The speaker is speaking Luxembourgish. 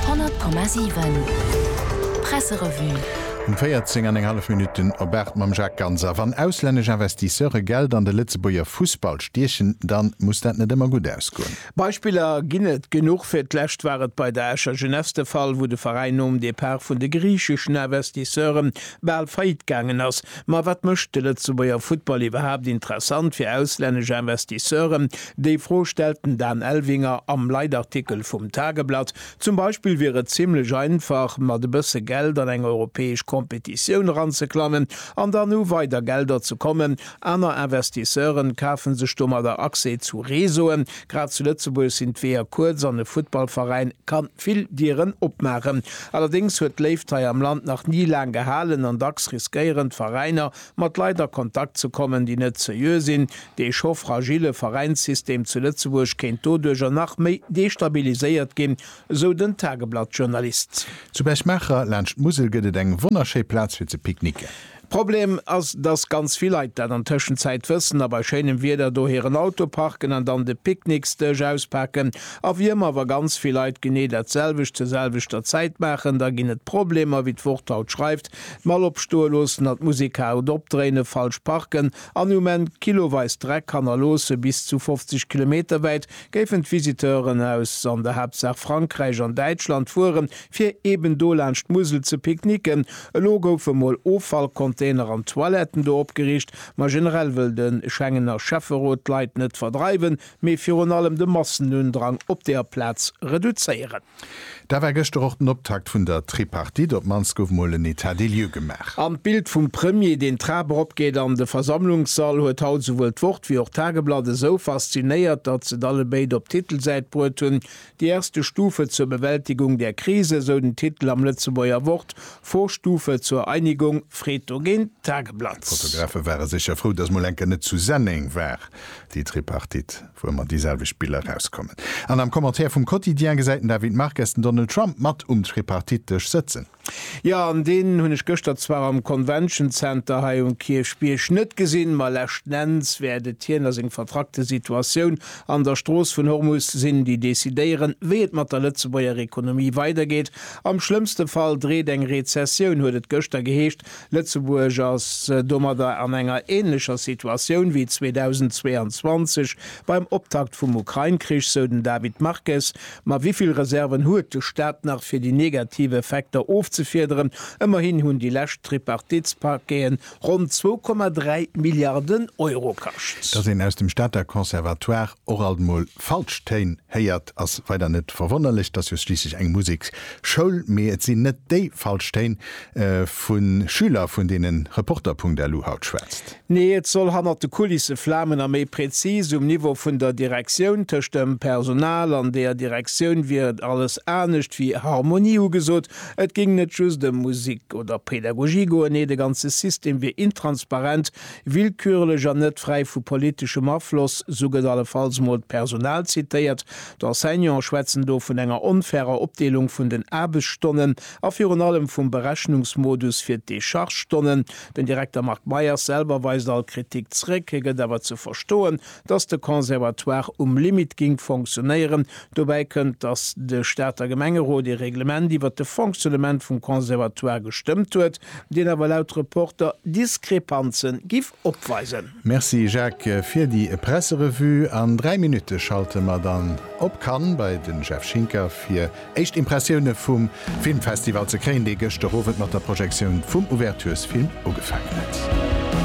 100,7 Presserevue. Um 14 an eng hallef Minutten op 8 mam Jacques Ganser. Wann auslännesch Investisseure Geld an de Lëtzebuerger Fussball stiechen, dann muss dat net ëmmer gutt ausgoen. Beispiller ginn et genuch. Fir d'lescht war et bei der Escher Jeunesse de Fall, wou de Veräin nom Depart vun de griicheschen Investisseure bal faillite gaangen ass. Ma wat mécht de Lëtzebuerger Futtball iwwerhaapt interessant fir auslännesch Investisseure? Déi Fro stellt den Dan Elvinger am Leitartikel vum Tageblatt. Zum Beispill wier et zimmlech einfach, mat e bësse Geld an eng europäesch Competitioun eranzeklammen an dann u weider Gelder ze kommen. Aner Investisseure kafe sech domadder Accès zu Réseauen. Grad zu Lëtzebuerg sinn d'Weeër kuerz an e Futtballveräin ka vill Dieren opmaachen. Allerdéngs huet d'Léift hei am Land nach ni laang gehalen an dacks riskéieren d'Veräiner, mat Leit a Kontakt ze kommen, déi net seriö sinn, dee scho fragille Veräinssystem zu Lëtzebuerg kéint doduercher nach méi destabiliséiert ginn, esou den Tageblatt-Journalist. Zu Berchmacher, laanscht d'Musel, gëtt et eng wonnerschéi Plaz fir ze picknicken. Problem ass, dass ganz vill Leit dat an Tëschenzäit wëssen a bei schéinem Wieder do hiren Auto parken an dann de Picknicksdësch auspaken. A wéi ëmmer, wa ganz vill Leit genee dat selwecht zur selwechter Zäit maachen, da ginn et Problemer, wéi d'Wort haut schreift. D'Mall opstoe loossen a d'Musekarut opdréinen, falsch parken an um Enn kiloweis Dreck hannerloosse bis zu 50 Kilometer wäit géifen d'Visiteuren aus an der Haaptsaach Frankräich an Däitschland fueren, fir eben do laanscht d'Musel ze picknicken. Elo goufe mol Offallcontainer an Toiletten do opgeriicht, ma generell wëll de Schengener Schäfferot d'Leit net verdreiwen, mee virun allem de Massenundrang op deer Plaz reduzéieren. Dat war gëschter och den Optakt vun der Tripartite, op d'mannst gouf mol en Etat des lieux gemaach. An d'Bild vum Premier, deen d'Trap eropgeet an de Versammlungssall, huet haut souwuel d'Wort wéi och d'Tageblatt esou faszinéiert, datt s'et allebéid op d'Titelsäit bruet hunn. Die erste Stufe zur Bewältigung der Krise, esou den Titel am Lëtzebuerger Wort, Vorstufe zur Einigung, freet dogéint d'Tageblatt. D'Fotografe ware sécher frou, datt mol eng Kéier net zu Senneng war, déi Tripartite. wou ëmmer déi selwecht Biller erauskommen. An am Commentaire vum Quotidien gesäit den David Marques den Donald Trump mat um Tripartite-Dësch sëtzen. Jo, an deen hunn ech gëschter zwar am Convention Center hei um Kierchbierg net gesinn, ma leschtnenns wäert et hien a seng vertrackte Situatioun an der Strooss vun Hormus sinn, déi decidéieren, wéi et mat der Lëtzebuerger Ekonomie weidergeet. Am schlëmmste Fall dreet eng Rezessioun, huet et gëschter geheescht, Lëtzebuerg ass domadder an enger änlecher Situatioun wéi 2022 beim Optakt vum Ukrain-Krich, sou den David Marques. Ma wéi vill Reserven huet de Staat nach, fir déi negativ Effekter ofzefiederen? Ëmmerhin hunn déi lescht Tripartitspakeeën ronn 2,3 Milliarden Euro kascht. Dass een aus dem Stater Conservatoire och alt mol falsch Téin héiert, ass weider net verwonnerlech, et ass jo schliisslech eng Museksschoul, mee et sinn net déi falsch Téin vu Schüler vun deene Reporter.lu haut schwätzt. Nee, et soll hannert de Kulisse flamen a méi prezis um Niveau vun der Direktioun. Tëscht dem Personal an der Direktioun wier et alles anescht wéi Harmonie ugesot. Et géing net just ëm Musek oder Pedagogie goen, nee de ganze System wier intransparent Willkürlech an net fräi vu politeschem Afloss, sou gëtt allefalls mol d'Personal zitéiert. D'Enseignante schwätzen do vun enger onfairer Opdeelung vun den Aarbechtsstonnen a virun allem vum Berechnungsmodus fir d'Dechargestonnen. Den Direkter Marc Meyers selwer weist all Kritik zréck. Hie gëtt awer ze verstoen, dass de Conservatoire um Limit géing fonctionnéieren. Dobäi kënnt, dass de Stater Gemengerot ee Reglement iwwert de Fonctionnement vum Conservatoire gestëmmt huet, deen awer laut Reporter Diskrepanze giff opweisen. Merci Jacques fir déi Presserevue. An 3 Minutte schalte mer dann op Cannes bei den Jeff Schinker fir éischt Impressioune vum Filmfestival ze kréien, dee gëschter Owend mat der Projektioun vum Ouverturesfilm ugefaangen huet.